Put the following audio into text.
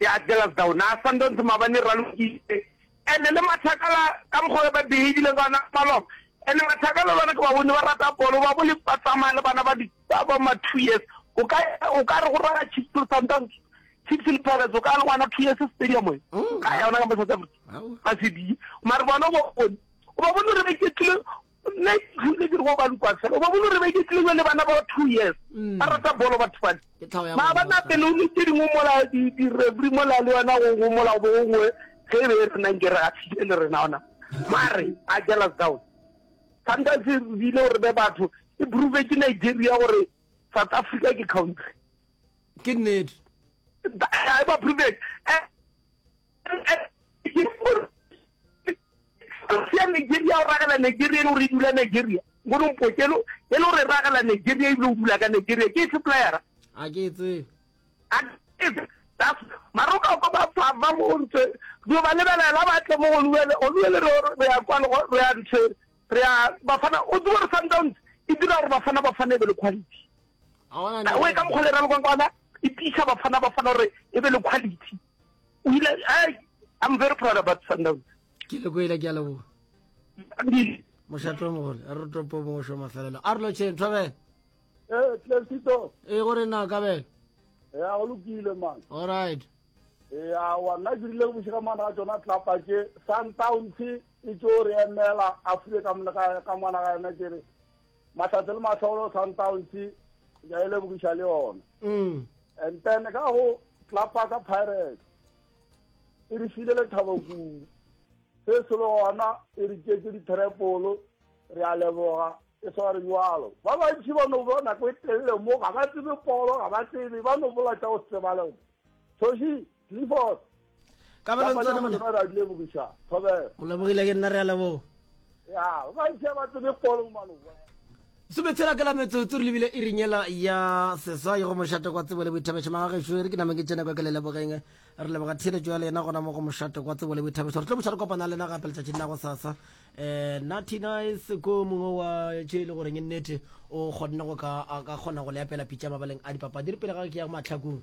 Ke a jealous thou na Sundowns maabane ralokile ene le mathakala ka mokgwa be ba behavile ka ona malom ene mathakala lwana ke ba bone ba rata bolo ba bole ba tsamaya le bana ba di ba ba ma two years o ka o ka re go rara chips le Sundowns chips le pirates o ka le ngwana two years stadium e mm, ka yona ka South Africa ba se di mare bona go o ba bone re ba iketlile Nna hantse ke re go ba Lukwasela, o ba bone gore ba iketlile bjale le bana ba two years, mm. ba rata bolo batho bale. Ma ba na pele o le tse dingwe mola di-referee mola le yona go mola bo gongwe ge e be e renang ke re ga se le rena ona. Mare a jealous down. Sometimes e bile gore be batho e prove ke Nigeria gore South Africa ke country. Ke nnete. Ba prove. Eh, sia nigeria o ragela nigeria e le gore e dula nigeria ngone mpokelo e le gore e ragela nigeria ebile o dula ka nigeria ke e suppliera a ke tsebe maroka ko ba fava mo ntse dio ba lebelela ba tle mo oluele oluele re re ya kwa lego re ya ntse re ya bafana o tswa re sundowns e dira gore bafana ba fane be le quality a ona ne o ka mo kholera le kwa kwana e pisa bafana bafana re e be le quality o ile ai i'm very proud about sundowns ke le kwele ke a leboga mošato o mogole re topo mongwe sho mafelelo a re lotšheng thobele ee tlesito ee gore na kabelo ya go lokile man allright ee awa nna ke rile bošega mana ka tsona tlapa ke sundowns e tso re emela a fule ka mona ka mona ga yena ke re Mahlatse le Mahlolo Sundowns ya e lebogiša le yona mm. and then ka go tlapaka Pirates e re file lethabo kudu se se le gona e re tšetse dithreepolo re a leboga e sware jalo ba bantši ba no bona ko e telele mo ga ba tsebe polo ga ba tsebe ba no bola tša go tsebale thoši Clifford. Ka ba lantsa le bona ra dile bugisha. Thobe. O lebogile ke nna re a leboga. Ya, ba ntse ba tsebe polo mano. sometshela ka la metsotso re lebile e rinyela ya seswa ye go mošate kwa tsebo le boithabešo magagešo e re ke name ke tsene kwa ke le lebogeng re leboga theeletšo ya le yena gona mo go mošate kwa tsebo le boithabešo re tlo boša re kopana le yena gape letšatšing la go sasa um natty nice ko mongwe wa tše e le goreng e nnete o kgonne go ka kgona go le apela pitša mabaleng a dipapadi re pele ga ke ya matlhakong